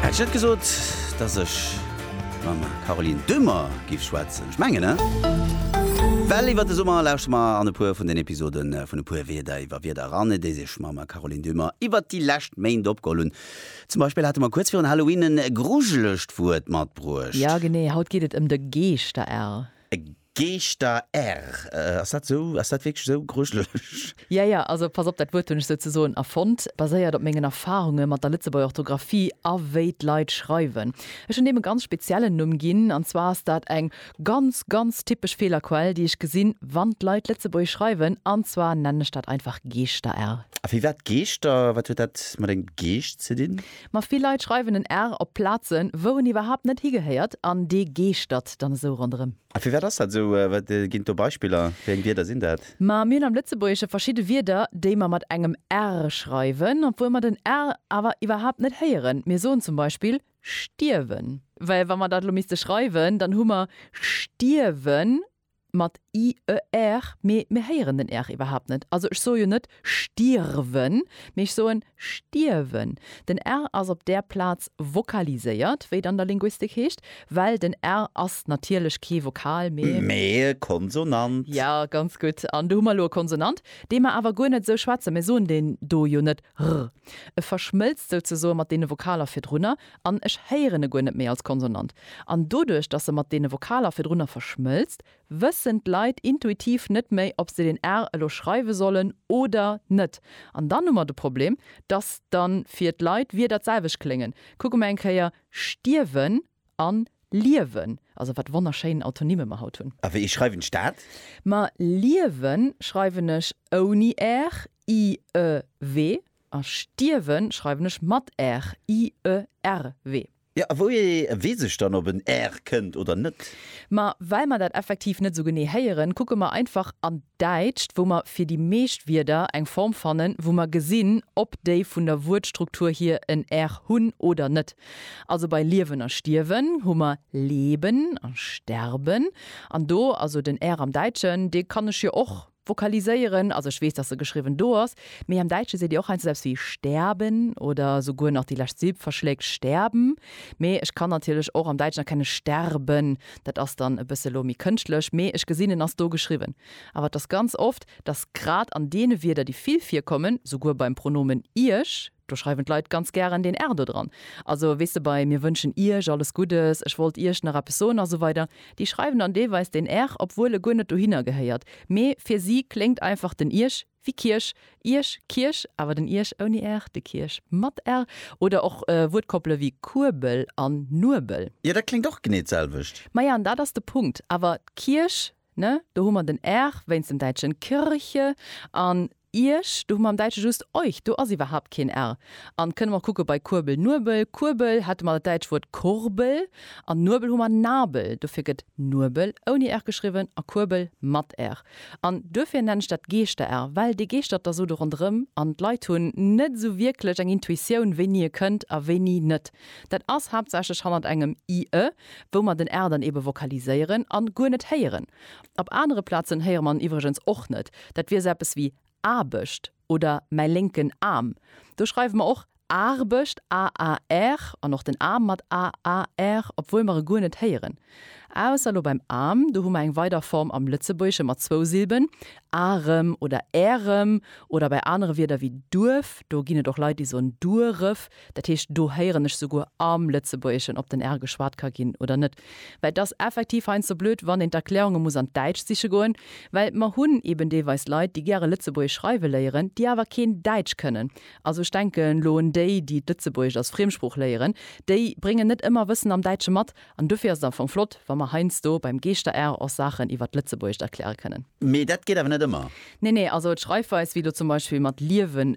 Hätt ech net gesot, dass ech mam Caroline Dummer giff schwätzen? Ech mengen, ne? Well iwwert de Summer lauschte mer an e puer vun den Episode vun E puer Wierder iwwer Wierder eran, déi sech mam Caroline Dummer iwwert déi lescht Méint opgeholl hunn. Zum Beispill hate mer kuerz virun Halloween e grujelegt Wuert matbruecht. Jo, genee. Haut geet et ëm de Geeschter-L. Geeschter err, ass dat esou? Ass dat wierklech esou grujelech? Jo, jo, also pass op, dat Wuert hunn ech souzesoen erfonnt, baséiert op mengen Erfarunge mat der Lëtzebuerger Orthografie a wéi d'Leit schreiwen. Ech hunn deem e ganz speziellen Numm ginn, an zwar ass dat eng ganz, ganz typesch Feelerquell, déi ech gesinn, wann d'Leit Lëtzebuergesch schreiwen, an zwar nennen ech dat einfach Geeschter err. A firwat Geeschter? Wat huet dat mat engem Geescht ze dinn? Ma vill Leit schreiwen en R op Plazen, wou en iwwerhaapt net higehéiert, an dee geeschtert dann esou ronderëm. A firwat ass dat esou? Wat ginn et do Beispiller? Wéi eng Wierder sinn dat? Ma mir hunn am Lëtzebuergesche verschidde Wierder, déi mer mat engem R schreiwen, obwuel mer den R awer iwwerhaapt net héieren. Mir soen zum Beispill stierwen. Well wa mer dat elo misste schreiwen, dann hu mer stierwen Mat IER, mee mir héieren den R iwwerhaapt net. Also ech soe jo net stirwen, mee ech soen stierwen. Den R ass op där Plaz vokaliséiert, wéi et an der Linguistik heescht, well den R ass natierlech kee Vokal, mee. Mee e Konsonant. Jo, ganz gutt. An do hu mer elo e Konsonant, dee mer awer guer net esou schwätzen. Mir soen deen do jo net r. E verschmëlzt souzesoe mat deene Vokaler virdrunner. an ech héieren e guer net méi als Konsonant. An doduerch, dass se mat deene Vokaler virdrunner verschmëlzt, wëssen d'Leit intuitiv net méi, ob se den r elo schreiwe sollen oder net. An dann hu mer de Problem, dass dann fir d'Leit d'Wierder d'selwecht kléngen. Kucke mer eng Kéier stierwen an liewen. Also wat wonnerschéin Autonymme mer haut hunn. A wéi schreiwen ech dat? Ma liewen schreiwen ech ouni r, i, e, we. A stierwen schreiwen ech mat r, i, e, r, we. Jo, a wouhier weess ech dann, ob en r kënnt oder net? Ma well mer dat effektiv net esou genee héieren, kucke mer einfach an d'Däitscht, wou mer fir déi meescht Wierder eng Form fannen, wou mer gesinn, ob déi vun der Wuertstruktur hier en r hunn oder net. Also bei liewen a stierwen hu mer leben a sterben. An do, also den r am Däitschen, dee kann ech jo och. Vokaliséieren, also ech weess, dass se geschriwwen do ass, mee am Däitsche seet Dir och heiansdo esou eppes wéi sterben oder souguer nach déi lescht Silb verschléckt, sterben. Mee ech kann natierlech och am Däitschen erkennen sterben, dat ass dann e bësse lo méi kënschtlech, mee ech gesinn en ass do geschriwwen. Awer et ass ganz oft, dass grad an deene Wierder, déi vill virkommen, souguer beim Pronomen Iech, Do schreiwen d'Leit ganz gären den Erdo dran. Also, weess de, bei Mir wënschen Iech alles Guddes, Ech wollt Iech nach eppes soen a sou weider, déi schreiwen dann deelweis den er, obwuel e guer net dohinner gehéiert, mee fir si kléngt einfach den Iech wéi Kierch, Iech, Kierch, awer den Iech ouni er, de Kierch mat er. Oder och Wuertkoppele wéi Kuebel an Nuebel. Jo, dat kléngt och genee d'selwecht. Maja, an dat ass de Punkt. Awer d'Kierch, ne, do hu mer den er wéinst dem Däitschen Kirche an. Iech, do hu mer am Däitsche just euch, do ass iwwerhaapt keen r. An kënne mer och kucke bei Kuerbel, Nuebel, Kuerbel hätte mer dat däitscht Wuert Kurbel, an Nuebel hu mer Nabel, dofir gëtt Nuebel ouni r geschriwwen a Kuerbel mat r. An duerfir nennen ech dat Geeschter-r, well dee geeschtert da sou do ronderëm an d'Leit hunn net sou wierklech eng Intuitioun, wéini e kënnt a wéini net. Dat ass haaptsächlech hannert engem i, ë, wou mer den r dann eebe vokaliséieren a guer net héieren. Op anere Plazen héiere mer en iwwregens och net. Dat wier sou eppes wéi Aarbecht oder mäi lénken Aarm. Do schreiwe mer och Aarbecht, AAR, an och den Aarm mat AAR, obwuel mer e guer net héieren. Ausser lo beim Aarm, do hu mer eng weider Form am Lëtzebuergesche mat zwou Silben, Arem oder Ärem. Oder bei anere Wierder wéi Duerf, do ginn et och Leit, déi soen Dueref. Dat heescht, do héieren ech souguer am Lëtzebuergeschen, ob den R geschwat ka ginn oder net, well et ass effektiv heiansdo blöd, wann een d'Erklärunge muss an d'Däitscht siche goen, well mer hunn eeben deelweis Leit, déi gäre Lëtzebuergesch schreiwe léieren, déi awer keen Däitsch kënnen. Also ech denken elo un déi, déi d'Lëtzebuergescht als Friemsprooch léieren, déi bréngen net ëmmer Wëssen am Däitsche mat. An dofir ass et am Fong flott, wa mer heiansdo beim Geeschter-R och Saachen iwwer d'Lëtzebuergescht erkläre kënnen. Mee dat geet awer net ëmmer? Nee, nee, also d'Schreifweis wéi elo zum Beispill mat liewen,